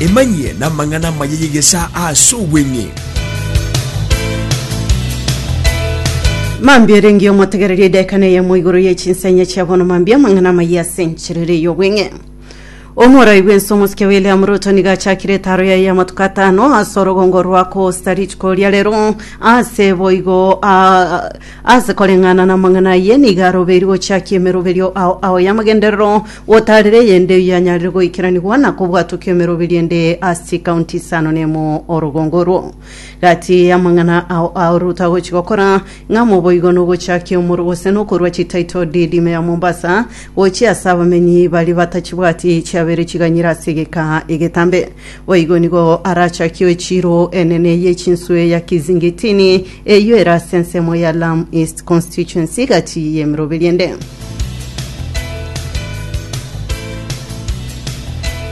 Emanyie namang'ana amaya y'egesaa ase obweng'e. Mambia erengio omotegererie edaika neyemo igoro ye chinsenya chia bono mambia amang'ana amaya ase encherere y'obweng'e omorai bwense omosike william ruto niga achakire etaro yaye y'amatuko atano ase orogongo rwa costa rico ria rero ase boigo ah, Ase koreng'ana namang'ana ayio nigo arobeirwe gochiakia emeroberio ao ao y'amagenderero, gotaarera eyende eyio yanyarire goikeranigwa na kobwatwa kw'emeroberio ende ase chikaunti isano nemo. Orogongo orwo gati y'amang'ana ao ao Ruto agochia gokora ng'a moboigo nogochiakia omoro gose nokorua chititle deed ime ya Mombasa gochia ase abamenyi baria batachibwati chiabeire chiganyire ase egeka egetambe. Boigo nigo arachakie echiiro enene y'echinswe ya Kizingitini Eyio ere ase ensemo ya Lamu East Constituency egati y'emeroberio ende.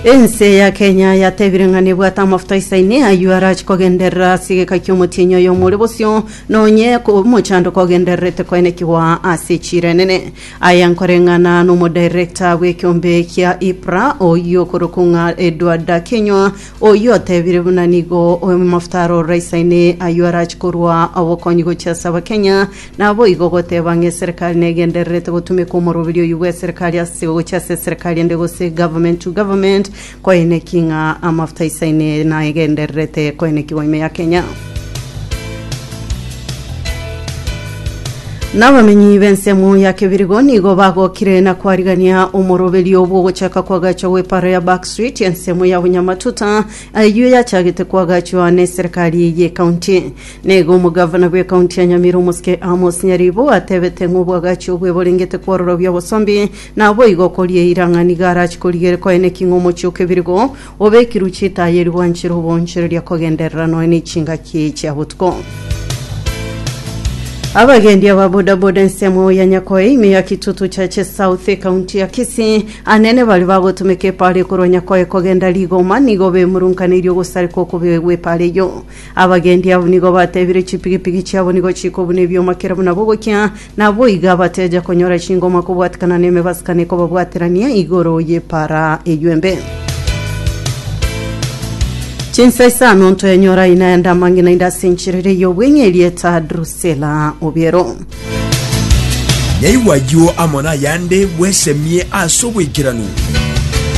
Ense ya Kenya yatebire ng'a nebwate amafuta isaine ayio arachi kogenderera ase egeka ki'omotienyi oyo omore bosio, nonye ko- omochando kogendererete koenekigwa ase echiro enene. Aya nkoreng'ana nomodirector bw'ekiombe kia IPRA oyio okorokwa ng'a Edward Akenywa Oyio otebire buna nigo amafuta arorora isaine ayio arache korwa obokonyi gochia ase Abakenya, naboigo goteba ng'a eserekari negendererete gotumeka omoroberi oyio bw'eserekari ase gochia ase eserekari ende gose government to government koeneki ng'a amafuta isaine naegendererete koenekigwa ime ya Kenya. Na abamenyi b'ensemo ya Kebirigo nigo bagokire na kwarigania omoroberio bw'ogochaka kw'agacho gw'eparo ya Back Street, ensemo ya Bunyamatuta, ayio yachagete kwagachwa n'eserekari y'ekaunti. Naigo omogavana bw'ekaunti ya Nyamira omosike Amos Nyaribo atebete ng'a obwagachi obwe borengete kwororobia obosombi, naboigo okoria eira ng'a nigo arache korigere koeneki ng'a omochie o Kebirigo Obekirwe chitaya erio gwanchire obonchereria kogenderera nonya ne chingaki chia botuko. Abagendi aba bodaboda ensemo ya Nyakoe ime ya Kitutu Chache South ekaunti ya Kisii anene bari bagotumeka epara ekorwa Nyakoe kogenda Rigoma nigo bemurunkaneirie ogosareka okobio gw'epara eyio. Abagendi abo nigo batebire chipigipigi chiabo nigo chikobuna ebioma kera buna bogokia Naboigo abateja konyora chingoma kobwatikana nemebasikano ekobabwaterania igoro y'epaara eyio embe. Chinsa isano ntoenyora ina ende amang'ina inde ase enchiriri ey'obweng'e erieta Drusela Obiero. Nyaigwa ayio amo nayande bwesemie ase oboikeranu.